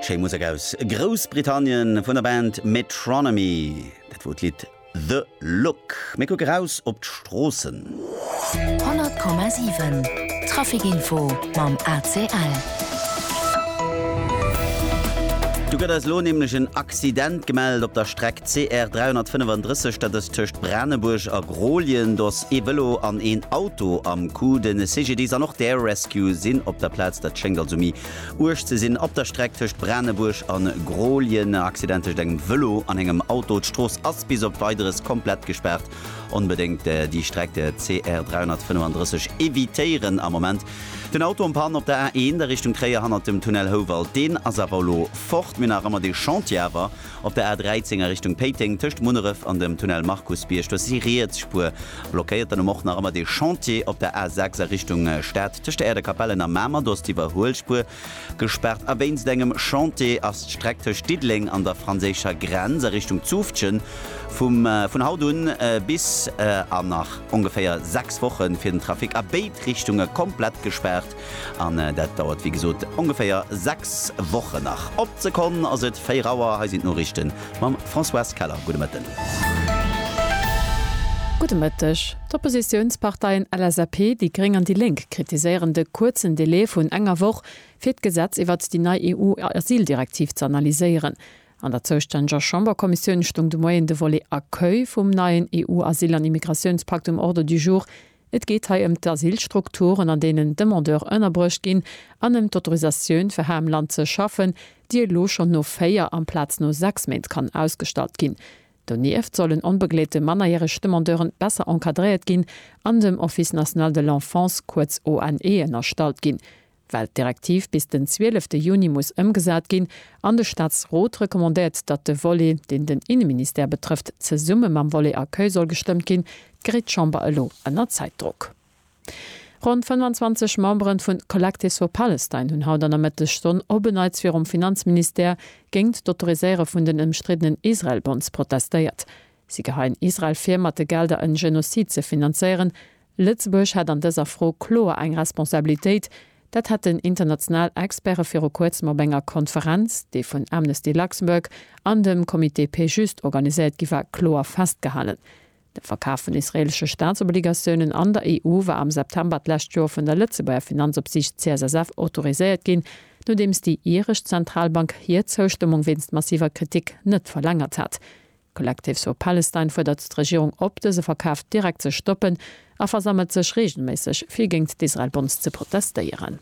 Schéi Musek aus Groussbritannien vun der Band Metronomy. Dat wor d'Lidd The Look. Mir kucke raus op d'Stroossen. 100,7 Trafic Info mam ACL. Do gëtt eis elo nämlech en Accident gemellt op der Streck CR 335, dat ass tëscht Branebuerg a. Rolien, dos, ee Vëlo an een Auto am Coup. De CGDIS an och d'Air Rescue sinn op der Plaz. Dat schéngt also méi uerg ze sinn op der Streck tëscht Branebuerg a Grolien. E Accident tëscht engem Vëlo an engem Auto. D'Strooss ass bis op Weideres komplett gespaart. Onbedéngt déi Streck CR 335 evitéieren am Moment. Den Auto en panne op der A1 a Richtung Tréier hannert dem Tunnel Houwald. Deen ass awer elo fort, mee nach ëmmer de Chantier awer. Op der A 13 a Richtung Péiteng tëscht Munneref an dem Tunnel Markusbierg, do ass déi riets Spuer blockéiert. Dann um och nach ëmmer dee Chantier op der A 6 a Richtung Stad tëscht der Aire de Capellen a Mamer, do ass d'Iwwerhuelspuer gespaart. A wéinst engem Chantier ass d'Streck tëscht Diddeleng an der franséischer Grenz a Richtung Zufftgen vum vun haut un bis an nach ongeféier 6 Wochen fir den Trafic a béid Richtunge komplett gespaart. An dat dauert wéi gesot ongeféier 6 Wochen nach. Op d'Sekonn ass et 4 Auer, hei sinn d'Noriichte mam Françoise Keller. Gudde Mëtten. Gudde Mëtteg. D'Oppositiounsparteien LSAP, déi gréng an déi lénk kritiséieren de kuerzen Delai vun enger Woch, fir d'Gesetz iwwert déi nei EU-Asyldirektiv ze analyséieren. An der zoustänneger Chamberkommissioun stoung de Moien de Volet Accueil vum neien EU-Asyl an Immigratiounspakt um Ordre du jour. Et geet hei ëm d'Asylstrukturen, an deenen Demandeur ënnerbruecht ginn, an ëm d'Autorisatioun, fir hei am Land ze schaffen, déi elo schonn no véier amplaz no sechs Méint kann ausgestallt ginn. Donieft sollen onbegleete mannerjäreg Demandeuren besser encadréiert ginn an dem Office national de l'enfance, kuerz ONE, ënnerstallt ginn. Well d'Direktiv bis den 12 Juni muss ëmgesat ginn an de Staatsrot recommandéiert, datt de Volet, deen den Inneministère betrëfft, zesumme mam Volet Accueil soll gestëmmt ginn, geréit d'Chamber elo ënner Zäitdrock. Ronn 25 Memberen vun Collective for Palestine hunn haut an der Mëttesstonn op en Neits virum Finanzministère géint d'Autoriséiere vun den ëmstriddenen Israel-Bonds protestéiert. Si geheien Israel vir, mat de Gelder en Genozid ze finanzéieren, Lëtzebuerg hätt an dëser Fro kloer eng Responsabilitéit. Dat hätten international Experte viru kuerzem op enger Konferenz, déi vun Amnesty Luxembourg an dem Comité Paix Juste organiséiert gi war, kloer festgehalen. De Verkaf vun israeelesche Staatsobligatiounen an der EU war am September d'lescht Joer vun der Lëtzebuerger Finanzopsiicht CSSF autoriséiert ginn, nodeems déi iresch Zentralbank hir Zoustëmmung wéinst massiver Kritik net verlängert hat. Collective for Palestine fuerdert d'Regierung op, dëse Verkaf direkt ze stoppen a versammelt sech reegelméisseg, fir géint d'Israel-Bombs ze protestéieren.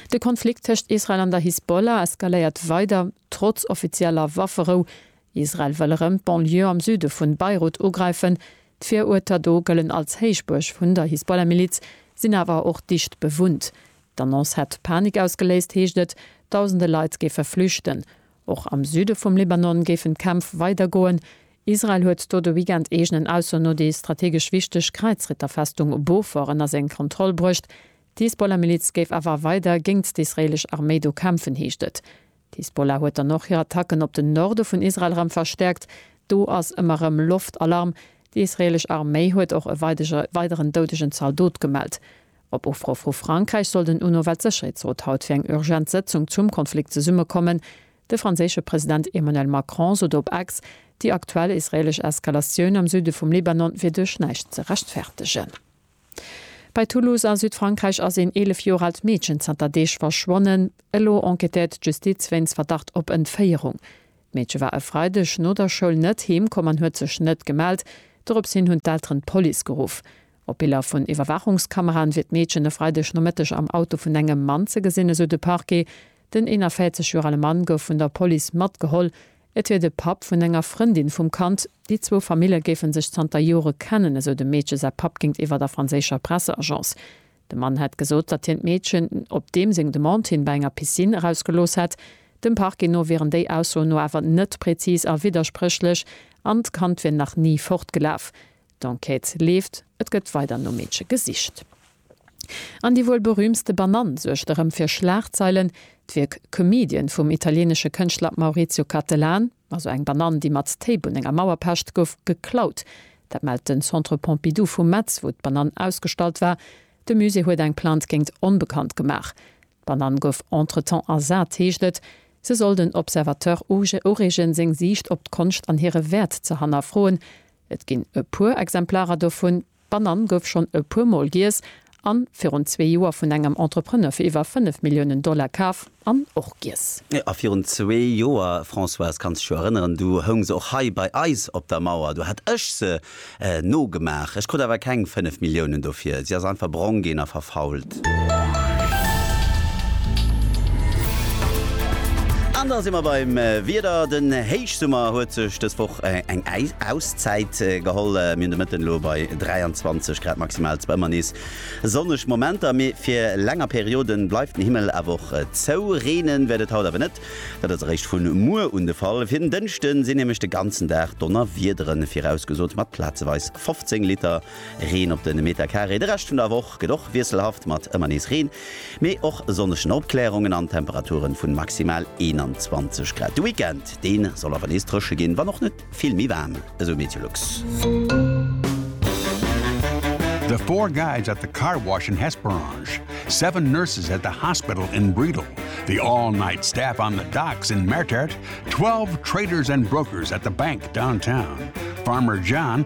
De Konflikt tëscht Israel an der Hisbollah eskaléiert weider, trotz offizieller Wafferou. Israel wëll erëm d'Banlieue am Süde vun Beirut ugräifen. D'Viruerter do gëllen als Héichbuerg vun der Hisbollah-Miliz, sinn awer och dicht bewunnt. D'Annonce hätt Panik ausgeléist, heescht et, dausende Leit géife flüchten. Och am Süde vum Libanon géifen d'Kämpf weidergoen. Israel huet do de Weekend eegenen Aussoen no déi strategesch wichteg Kräizritterfestung Bofor ënner seng Kontroll bruecht. D'Hisbollah-Miliz géif awer weider géingt d'israeelesch Arméi do kämpfen, heescht et. D'Hisbollah huet dann och hir Attacken op den Norde vun Israel erëm verstäerkt. Do ass ëmmer erëm Loftalarm. Déi israeelesch Arméi huet och e weideren doudegen Zaldot gemellt. Op Ufro vu Frankräich soll den UNO-Weltsécherheetsrot haut fir eng urgent Sëtzung zum Konflikt zesummekommen. De franséische President Emmanuel Macron sot op Ex, déi aktuell israeelesch Eskalatioun am Süde vum Libanon wier duerch näischt ze rechtfertegen. Bei Toulouse a Südfrankräich ass een 11 Joer aalt Meedchen zanter Deeg verschwonnen. Elo enquêtéiert d'Justiz wéinst Verdacht op Entféierung. D'Meedche war e Freideg no der Schoul net heem komm an huet sech net gemellt. Dorops hin hunn d'Elteren d'Police geruff. Op Biller vun Iwwerwaachungskameraen wier d'Meedchen e Freideg Nomëtteg am Auto vun engem Mann ze gesinn, esou de Parquet. Den 41 Joer ale Mann gouf vun der Police matgeholl. Et wier de Papp vun enger Frëndin vum Kand. Déi zwou Famille géife sech zanter Jore kennen, esou dem Meedche säi Papp géintiwwer der franséischer Presseagence. De Mann hätt gesot, datt hien d'Meedchen op deem seng Demande hin bei enger Piscine erausgelooss hätt. Dem Parquet no wieren déi Aussoen no awer net prezis a widderspréchlech an d'Kand wier nach ni fortgelaf. D'Enquête leeft, et gëtt weider nom Meedche gesicht. An déi wuel berüümtste Banann suergt erëm fir Schlagzeilen. D'Wierk Comedian vum italieenesche Kënschtler Maurizio Cattelan, also eng Banann, déi mat Téip un enger Mauer pecht, gouf geklaut. Dat mellt den Centre Pompidou vu Metz, wou d'Banann ausgestallt war. De Musée huet eng Plainte géingt onbekannt gemaach. D'Banann gouf entretemps ersat, heescht et. Se soll den Observateur ureegen, seng Siicht op d'Konscht an hire Wäert ze hannerfroen. Et ginn e puer Exemplarer dovun. D'Banann gouf schonn e puer Mol giess an virun zwee Joer vun engem Entrepreneur fir iwwer 5 Milliounen Dollar kaf an och giess. A virun zwee Joer, Françoise, kanns dech jo erënneren, du houng se och hei bei eis op der Mauer. Du hat ech se nogemaach. Ech krut awer keng 5 Milliounen dofir. Si ass einfach brong ginn a verfault. An da si mer beim Wieder. Den Héichsummer huet sech dës Woch eng Auszäit geholl. Mir hunn de Mëtten elo bei 23 Grad maximal. Zwar ëmmer nees sonneg Momenter, mee fir länger Periode bleift den Himmel awer och zou. Reenen wäert et haut awer net, dat ass eréischt vu muer un de Fall. Fir den Dënschde sinn nämlech de ganzen Dag Donnerwiederen virausgesot mat plazeweis 15 Liter. Reen op de Metacaré. De Rescht vun der Woch gëtt och wiesselhaft mat ëmmer nees Reen, mee och sonneschen Opklärungen an Temperature vun maximal 21 Grad. De Weekend, dee soll awer nees drëche ginn, wann och net vill méi waarm, esou Meteolux. The four guys at the car wash in Hesperange, seven nurses at the hospital in Bredal, the all-night staff on the docks in Mertert, twelve traders and brokers at the bank downtown, Farmer John,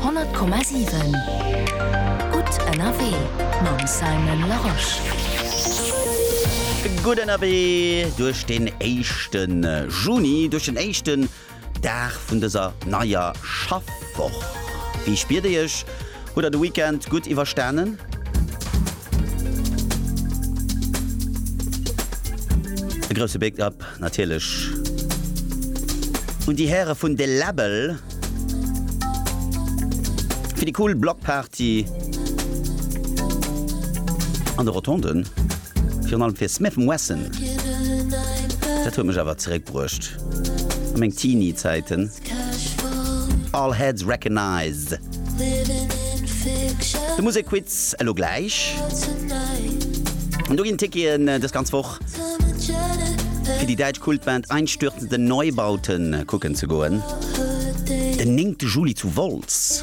100,7 Gutt ënnerwee mam Simon Larosche. Gutt ënnerwee duerch den éischte Juni, duerch den éischten Dag vun dëser neier Schaffwoch. Wéi spiert Dir Iech? Hutt Der de Weekend gutt iwwerstanen? E grousse Big Up An natierlech un déi Häre vun De Läbbel fir déi cool Blockparty an de Rotonden, virun allem fir Smith & Wesson. Dat huet mech awer zeréckbruecht a meng Teenie-Zäiten. All heads recognized. De Musekquiz elo gläich. Do ginn d'Ticketen dës ganz Woch. Fir déi däitsch Kultband Einstürzende Neubauten kucken ze goen den 9 Juli zu Wolz.